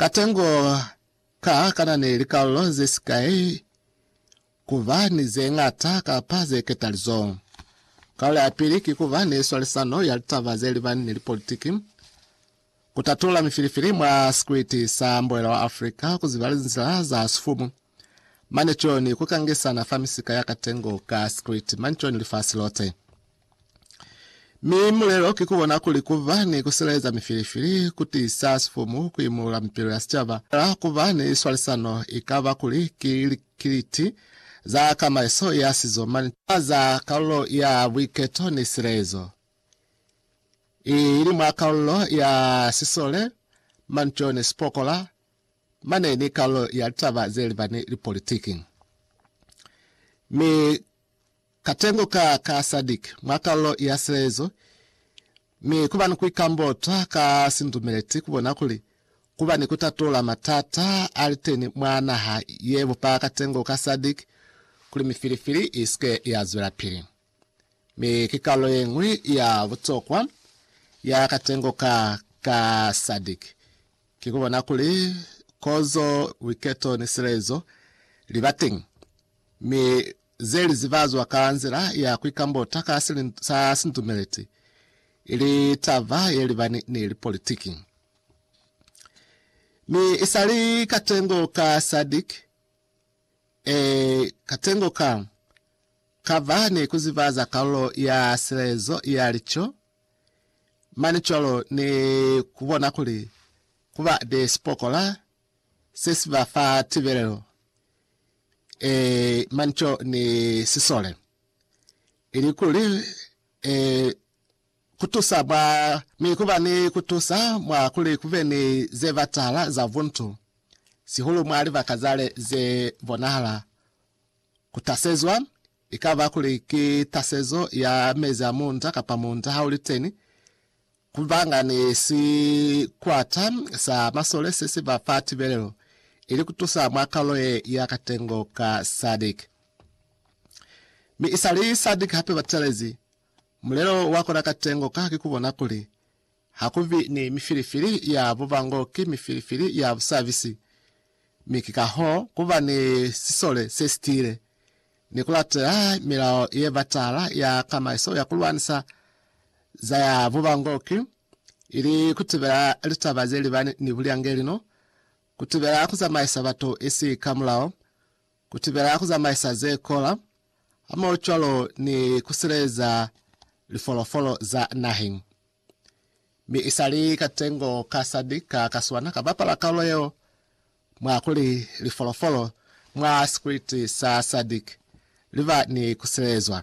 Katengo ka kana ni likalolo ze si kai ku ba ni ze ñata kapa ze ketalizo. Kalo ya pili ki ku ba ni swalisano ya litaba ze libani ni lipolitiki, ku tatula mifilifili mwa sikwiti sa Mboela wa Afrika, ku ziba linzila za sifumu, mane co ni ku kangisana fa misika ya katengo ka sikwiti, mane co ni lifasi lote. Mi mulelo ki kubona kuli kuba ni kusilaeza mifilifili, kutiisa sifumu, kuimulula mipilo ya sicaba, la kuba ni swalisano, ikaba kuli ki likiliti za kamaiso ya sizo mane taba za kalulo ya buiketo ni silaezo, i ili mwa kalulo ya sisole, manco ni sipokola, mane ni kalulo ya litaba ze liba ni lipolitiki. Mi. Katengo ka ka Sadic mwa kalolo ya silezo, mi kuba ni kuikambota ka sindumeleti kubona kuli kuba ni kutatola matata aliteni mwa naha ye bupa katengo ka Sadic kuli mifilifili isike ya zwelapili. Mi ki kalolo yeñwi ya butokwa ya katengo ka ka Sadic ki kubona kuli kozo, buiketo ni silezo liba teñi, mi ze li zibazwa ka nzila ya ku ikambota ka silindo sa sintumeleti, ili taba ye libani ni lipolitiki. Mi isali katengo ka SADC, ee, katengo ka, ka ba ni ku zibaza kalulo ya silezo ya lico, mane cwalo ni ku bona kuli ku ba ni sipokola se si ba fa tibelelo, e, manco ni sisole, ili kuli e, kutusa mwa, mi kuba ni kutusa mwa kuli kube ni ze batahala za buntu, sihulu mwa libaka zale ze bonahala kutasezwa, ikaba kuli ki tasezo ya mezi a munda kapa munda hauliteni, Kubangani sikwata sa masole se si ba fa tibelelo ili ku tusa mwa kalulo ye ya katengo ka SADC. Mi isali SADC hape ba telezi mulelo wa kona katengo ka haki ku bona kuli ha ku bi ni mifilifili ya bubango ki mifilifili ya busabisi, mi ki kahoo ku ba ni sisole se si tiile. ni ku latela milao ye batala ya tamaiso ya ku lwanisa za ya bubangoki, ili ku tibela litaba ze libani ni bulyangeli no ku tibela ku zamaisa batu isi ka mulao, ku tibela ku zamaisa ze kola, hamohocwalo ni ku sileleza lifolofolo za naheng. Mi isali katengo ka sadi ka kaswana ka bapala kalulo yeo mwa kuli lifolofolo mwa sikwiti sa sadi liba ni kusilelezwa.